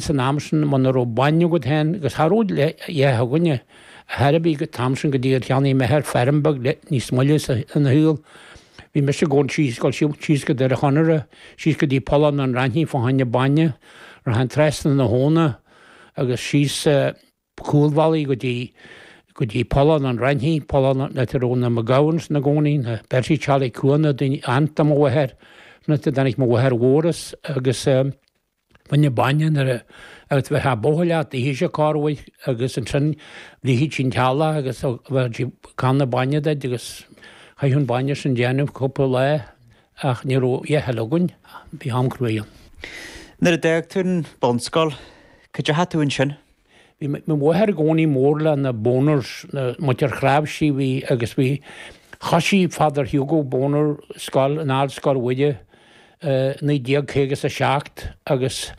san am sin, muna raibh bainne agat féin agus cha raibh eallach againne ar chor ar bith an t-am sin go dtí gur cheannaigh m'athair feirm beag níos moille ina shaol, bhí mise ag gabháil síos, dul síos go Doire Chonaire, síos go dtí Pollán an Raithní fá choinne bainne, rachainn trasna na habhna agus síos. cúlbhealaí go dtí, go dtí Pollán an Raithní, Pollán, an áit a raibh na McGowans ina gcónaí, na Bertie Charlie Cuana, daoine, aunt do mo mháthair, an áit a dtáinig mo mháthair mhór as agus eh baineadh bainne nuair a, agus bheadh a' bóthar leat, d'itheadh sé cárr uaidh agus ansin bhligfeadh sí an t-eallach agus bheireadh sí canna bainne duit agus chaithfeadh an bainne sin déanamh cúpla lá ach ní raibh a fhios againn, bhí am cruaidh ann. Nuair a d'fhág tú an bunscoil, cá dteachaidh tú ansin? Bhí mo mháthair i gcónaí mór le na Boners, muintir Chnáimhsí, bhí, agus bhí, thoisigh Father Hugo Boner scoil in Ardscoil Mhuire i 1950 is a seacht agus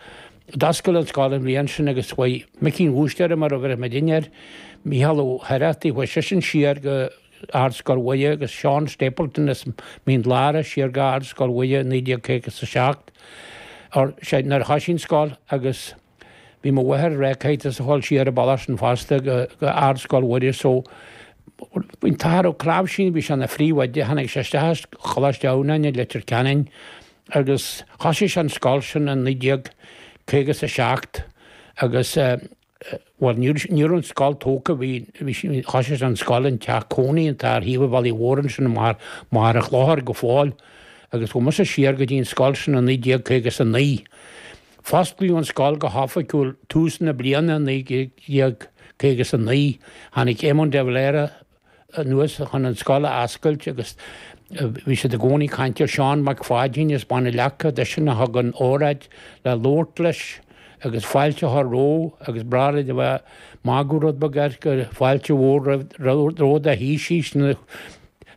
d'fhoscail an scoil an bhliain sin agus chuaigh Micí an Bhúistéara mar a bheireadh muid fhéin air, Mícheál Ó hOireachtaigh, chuaigh seisean siar go Ardscoil Mhuire agus Seán Stapleton as Mín Lárach siar go Ardscoil Mhuire i 1950 is a seacht, or, sé, nuair a thoisigh an scoil agus. Bhí mo mháthair ag rá caithfidh tusa a ghabháil siar an bealach sin fosta go Ardscoil Mhuire so bhí an t-Athair Ó Cnáimhsí, bhí sé ina phríomhoide, tháinig sé isteach as Coláiste Adhamhnáin i Leitir Ceanainn agus thosaigh sé an scoil sin i naoi déag caoga is a seacht agus bhuel ní raibh, ní raibh an scoil tógtha, bhí, bhí sé, thosaigh sé an scoil in teach cónaí atá ar thaobh an bhealaigh mhóir ansin i Machaire, Machaire Chlochair go fóill agus chuaigh mise siar go dtí an scoil sin i naoi déag caoga is a naoi. Fosclaíodh an scoil go hoifigiúil tús na bliana 1950 is 9 tháinig Éamon de Valera anuas chun an scoil a fhoscailt agus bhí siad i gcónaí ag caint ar Sheán Mac Pháidín as Bun an Leaca, eisean a thug an óráid le labhairt leis agus fáilte a chur roimhe agus ba ghnách leo a bheith ag magadh rud beag air gur fáilte mhór romhat a Thaoisigh sin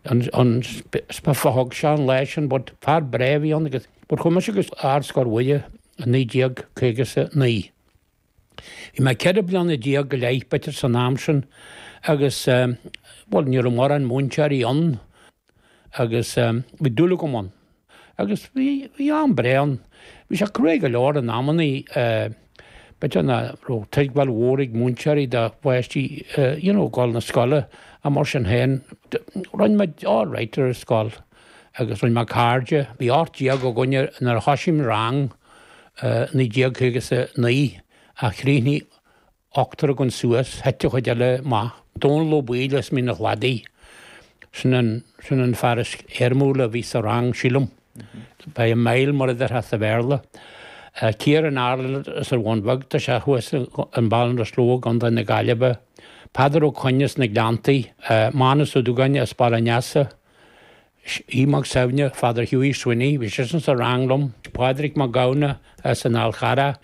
an speech a thug Seán leisean but fear breá a bhí ann agus But chuaigh mise go Ardscoil Mhuire, 1959. Bhí mé 14 bliana go leith b'fhéidir san am sin agus, bhuel, ní raibh mórán múinteoirí ann agus bhí dúil agam ann. Agus bhí am breá ann. Bhí sé cruaidh go leor in amanna, b'fhéidir nach raibh tuigbheáil mhór ag múinteoirí do pháistí, you know, dul na scoile, mar sin féin. Rinn muid all right ar an scoil. agus rinne mé cairde. Bhí 18 againn nuair a thoisigh Rang 1959 ach chríochnaigh ochtar againn suas, thit an chuid eile amach. Dónall Ó Baoill as Mín a Chladaigh, sin an fear is éirimiúla a bhí sa rang sílim, by a mile mar a déarfá sa Bhéarla. Kieran Ireland as an Bhun Bheag, tá sé thuas in Ballinasloe i gContae na Gaillimhe. Peadar Ó Coinn as na Gleanntaí, Mánus Ó Dúgáin as Baile an Easa. Aodh Mac Suibhne, Father Hughie Sweeney, bhí seisean sa rang liom, Pádraig Mac Gabhann as an Fhal Charrach,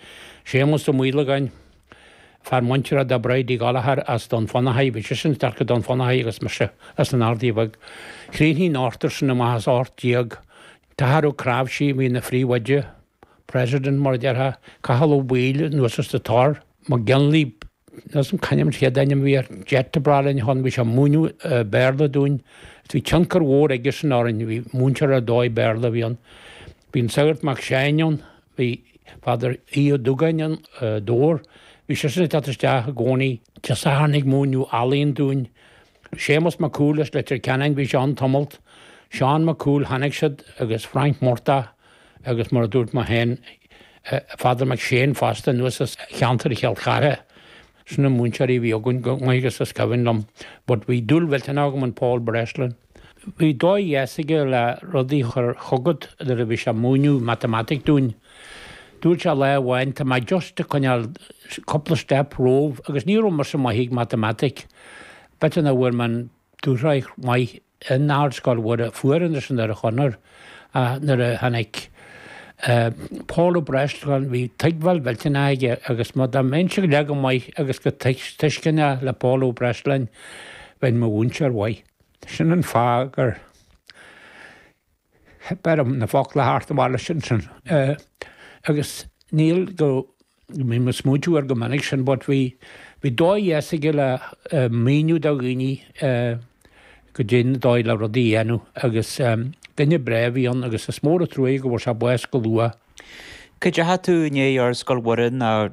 Séamus Ó Maolagáin, fear muinteartha do Bridie Gallagher as Dún Fionnachaidh, bhí seisean isteach go Dún Fionnachaidh agus mise as an Ardaidh Bhig. Chríochnaigh an t-ochtar sin amach as 18, an tAthair Ó Cnáimhsí a bhí ina phríomhoide, president mar a déarfá, Cathal Ó Baoill anuas as The Tor, McGinley, níl a fhios agam cá hainm, an chéad ainm a bhí air, Jet a bra linn a thon. Bhí sé ag múineadh Béarla dúinn. Is bhí tionchar mhór aigesan orainn. Bhí múinteoir ar dóigh Béarla a bhí ann. Bhí an Sagart Mac Seáin ann. Bhí Father Aodh Ó Dúgáin ann, Dobhar. Bhí seisean ag teacht isteach i gcónaí Dé Sathairn ag múineadh ealaín dúinn. Séamus Mac Cumhaill as Leitir Ceanainn, bhí sé ann tamalt, Seán Mac Cumhaill, tháinig siad agus Frainc Murtagh agus mar a dúirt mé féin Father McShane fosta anuas as cheantar Chill Chartha. Sin na múinteoirí a bhí againn chomh maith agus is cuimhin liom but bhí dúil mhillteanach agam in Paul Breslin. Bhí dóigh dheas aige le rudaí a chur chugat nuair a bhí sé ag múineadh matamaitic dúinn. Dúirt sé lá amháin, Tá mé just ag coinneáil cúpla step romhaibh agus ní raibh mise maith ag matamaitic. B'fhéidir nach bhfuair mé an dúshraith maith in Ardscoil Mhuire fuair Anderson ar a chonair ach nuair a tháinig Paul Ó Breisleáin bhí tuigbheáil mhillteanach aige agus má dá mbeinnse leath chomh maith agus chomh tuisceanach le Paul Ó Breisleáin bheinn mo mhúinteoir mhaith. Sin an fáth gur Theip orm na focla le theacht amach leis sin agus níl go mbím ag smaointiú air go minic sin but bhí dóigh dheas aige le míniú do dhaoine caidé an dóigh le rudaí a dhéanamh agus duine breá a bhí ann agus is mór an truaighe go bhfuair sé bás go luath. Cá ndeachaigh tú i ndiaidh Ardscoil Mhuire nó